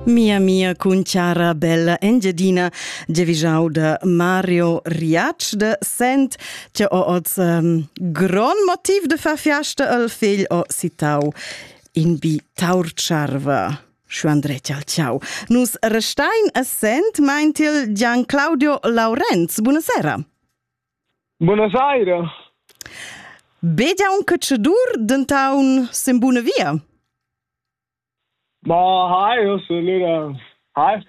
Mia mia cun chara bella Engiadina, giavischau da Mario Riatsch de Sent, che ho oz um, gron motiv de far fiasta al figl ho citau in bi taurcharva. Schu Andretti al ciao. Nus restein a Sent, meint il Gian Claudio Laurenz. Buonasera. Buonasera. Begia un cacciadur dentaun sen buna via? Ma hai, eu sun lura... Hai.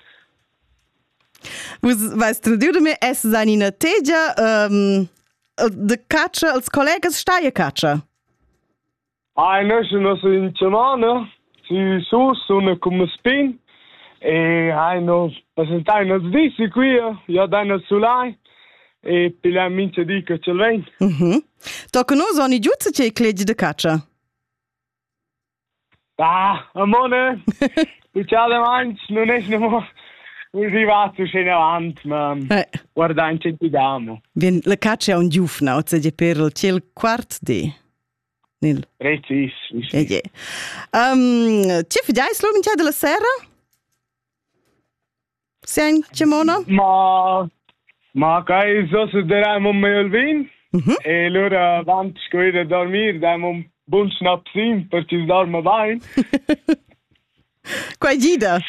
Vus vais tradiu de me essas an ina tegia um, de caccia als collegas stai a caccia? Ai, nus nos ün Germaner, sü su sun cun meis pin e hai no presentai nos dis qui, ja da nos sulai e pigliai mincha di che ch'el vegn. Mhm. Tocca nus ogni giuzza che clegi de caccia. Ah, amone, succede manch, non es nemo arrivato scene avanti, ma Eh. guarda in ci diamo. Vien, la caccia è un giufna, oz è per il ciel quart di. Nil. Precis. Okay. Um, tge fidais l'umintia della serra? Sen Cimona? Ma, ma kai so se deraimo meil vin. Mm E allora avant sco ir a dormir damo un bun snapsin per ci dorma bain. Quai gida.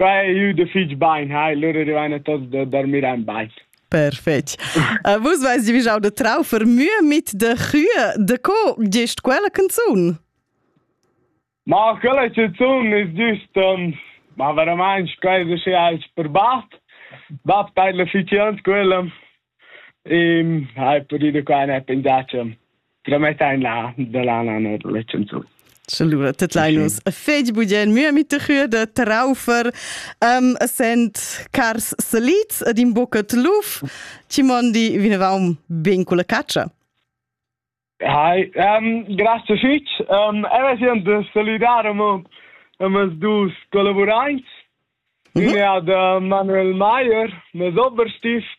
Quai è da fitg bain, hai, lura rivain tots da dormir en bain. Perfetto. Uh, vus weiss wie jau de traufer mühe mit de Kühe de co gest quella canzun? Ma quella canzun ist just um, ma veramente quasi schon als per bat. Bab teilt la fitians quella Ehm, hai pudü qua ne pensar cha tramettain là da là na la chanzun. Salua, tet Linus. E fegi bugien, mia mit chüa da Traufer, um, sent cars salids ed in boccat luf, ci mondi vinavaum ben cu la caccia. Hi, um, grazie fitch. Um, eva siand de saludar amo amas dus collaboraints. Mm -hmm. Ine ad uh, Manuel Mayer, mes Oberstift,